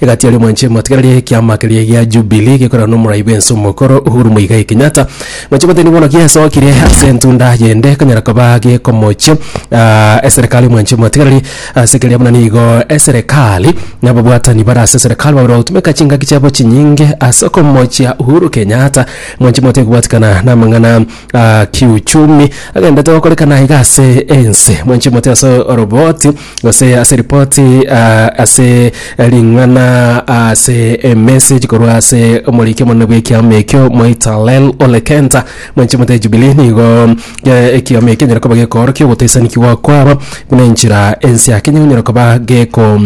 Egati aria mwanche motigana ria ekiama keria gia Jubilee gekorana na omoraibe ense omokoro Uhuru Muigai Kenyatta. Mwanche goteba nigo bono giasokire ase entunda yende konyara koba gekomochia ah, eserekari mwanche motiganari ase keria buna nigo eserekari na ababwatani bare ase eserekari babere bagotumeka chingaki chiabo chinyinge ase okomochia Uhuru Kenyatta mwanche motige kobwatikana na amang'ana ah, kiuchumi agendete gokorekana iga ase ense mwanche mote ase oroboti gose ase ripoti ah, ase ring'ana ah, ase emessage korwa ase omoriki omonene bw'ekiama ekio moitalel ole kenta mwenche mote ejubili nigo eh, ekiama ekio enyare koba gekoorokia ogotaisanikigwa kwabo buna enchera ense ake enyare konyara koba geko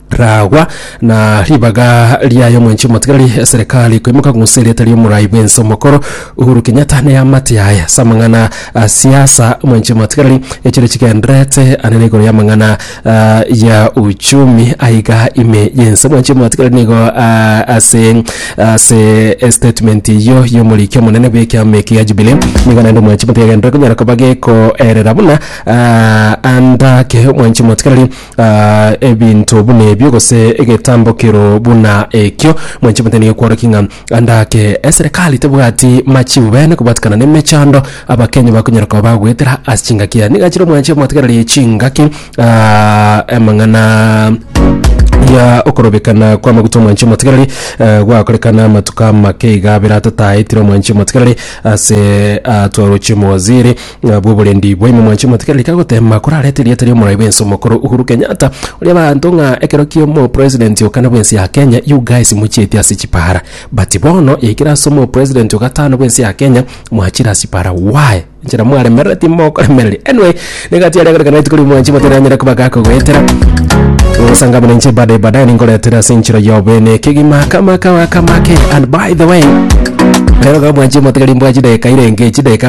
ragwa, na ribaga riaye omwenchi omotigareri eserekari koimoka kong'usa erieta ri'omorai bw'ense omokoro Uhuru Kenyatta na eamate yaye ase amang'ana a siasa omwenchi omotigareri echire chigendererete ande na igoro y'amang'ana ah, ya uchumi aiga ime y'ense omwenchi omotigareri nigo ah, ase ase estatement eyio y'omoriki omonene bw'ekiama eke gia Jubilee nigo naende omwenchi omotigareri agenderere konyara koba gekoerera buna ah, ande ake omwenchi omotigareri ebinto buna ebio, gose egetambokero buna ekio, mwanche mote nigo kworokia ng'a ande ake eserekari tebwati machibu bene kobwatikana nemechando abakenya bakonyara koba bagoetera ase chingaki yaye. Nigo achire mwanche motegereri chingaki ah, amang'ana ya okorobekana kwa maguta omwanche motegereri eh, gwakorekana amatuko amake iga abere atataetire omwanche motegereri ase atwaroche mowaziri Nabwo oborendi bwaino mwanche motige reka gotema korareta erieta ri'omorai bw'ense omokoro Uhuru Kenyatta oria abanto ng'a ekero ki'omo president o kana bw'ense ya Kenya you guys mochieti ase chipara but bono yaikire ase omo president o gatano bw'ense ya Kenya mwachire ase chipara why nchera mwaremerera timokoremereria anyway nigo atiare agore kana rituko riu mwanche motere anyare koba gakogoetera Osanga mune nche baadaye baadaye ningoretera ase enchera ya obene kegima kama kawa kamake and by the way rero ga mwanche motige rimbwachi dageka irenge chidageka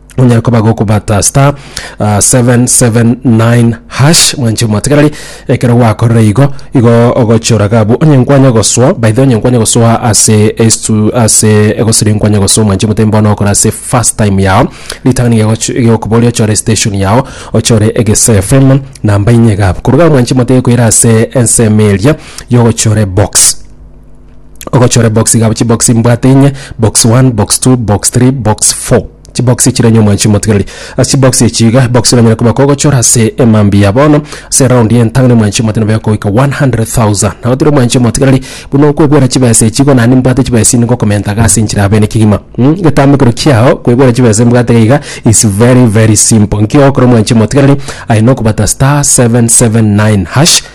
onyare koba gokobata star uh, 779 hash mwanche mwategereri ekero gwakorire igo igo ogochora gabu onye nkwanya goswa by the onye nkwanya goswa ase estu ase egosiri nkwanya goswa mwanche mutembo bono okora ase first time yao ritangani gegokuboria ochore station yao ochore egese fm namba inye gabu koruga mwanche mwatege koira ase ensemo eria yogochore box ogochore box igabo chibox mbwate inye box 1 box 2 box 3 box 4 chibox chire enye omwanchi omotigareri ase chibox echi iga box oranyare koba kogochora ase emambia ya bono ase round ya entang'ani omwanchi omotiga nabo yakogoika 100,000 nabo tiri omwanchi omotigareri buna okwebwera chibesa echi igo naye nimbwate chibesa echi ngokomenta iga ase enchera ya bene kegima mm egetambe ekero kiao kwebwera chibesa iga mbwate iga is very very simple nki ogokora omwanchi omotigareri aye nokobata star 779 hash.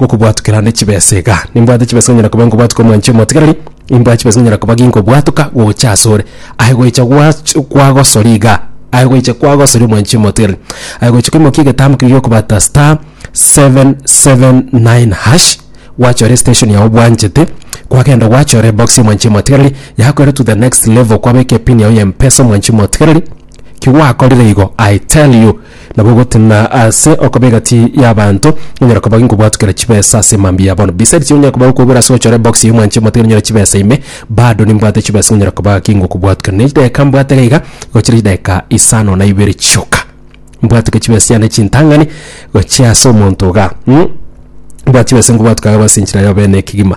gokobwatokera ande chibesa iga. Nimbwate chibesa onyara koba nkobwatuka omwanchi omotigareri, nimbwate chibesa onyara koba ginkobwatuka gocha asore. Aye goicha gwach- kwagosori iga, aye goicha kwagosori omwanchi omotigareri. Aye goicha koimokia egetambo keria giokobata star 779 hash, gwachore estation yago bwanchete, kwagenda gwachora ebox ya omwanchi omotigareri, yakoira to the next level kwabeka epin yago ya mpesa omwanchi omotigareri, ki gwakorire igo, I tell you, Nabo ogotena ase okoba egati y'abanto, onyare koba ngokobwatwa kera chibesa ase mambia ya bono. Besides ekio onyare koba gokobera ase gochora ebox ya omwanche omotebia onyore chibesa ime, bado nimbwate chibesa ng'a onyare koba gaki ngokobwatwa kera. Ne chidakika mbwate iga iga gochira chidakika isano na ibere chioka. Mbwate chibesa chiane chintang'ani gochia ase omonto iga, mm. Mbwate chibesa ngobwatwa iga ase enchera yobene ekegima.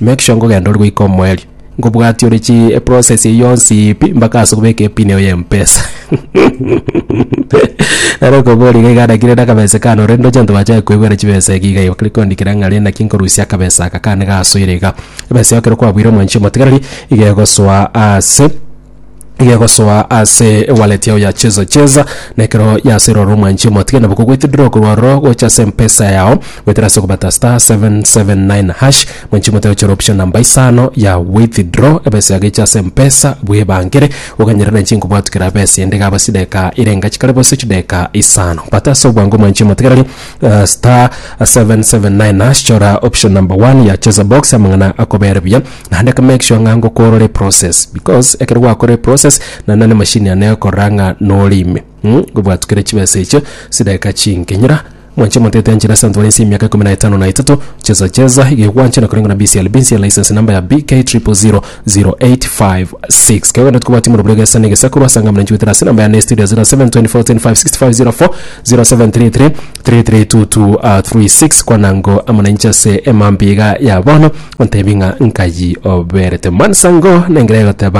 Make sure ngogenda ori goika omoerio ngobwatia ore chi process eye yonsi pi mpaka ase kobeka epin eye ya mpesa nare okobori iga iga anakire na akabese kane ore ndoche abanto bachaye koebwera chibesa ege iga bakare koandikera ng'a renda ki nkorusia akabesa aka kane gasoire iga ebesa yao ekero kwabuire omwanchi omotigareri iga egosoa ase gegosoa ase ewallet yao ya cheza cheza na ekero yasirwa ore omwanchi omotige nabo kogoitidora okorwa ororo gocha ase mpesa yao goetera ase okobata star 779 hash mwanchi omote ochore option namba isano ya withdraw ebesa yago eche ase mpesa bwebangere oganyerane inche nkobwatu kera besa ende igaba chidakika ere engachi kare gose chidakika isano bata ase obwango mwanchi omotigareri eh, star 779 hash chora option number one ya cheza box amang'ana akobere buya Naende ka make sure ng'a ngokorora eprocess because ekero gwakorora eprocess naende nonye na emashini yane egokorora ng'a nore ime mm ngobwatukere chibesa echio chidageka chinke. Nyora mwanche omonto etenchire ase abanto bare nse y'emiaka ikomi na etano na etato chesa chesa iga igo gwanchire korengwa na BCLB nse ya license number ya BK000085 6. Kegogende tokobwati morobio egesa na egesaku rwasanga muna nchugutera ase enamba yane ya estudio 072410565040 0733 33:36 Kwana ngo amo nainche ase emambia iga ya bono, ontebi ng'a nkayi oberete. Mwansa ngo nengera egoteba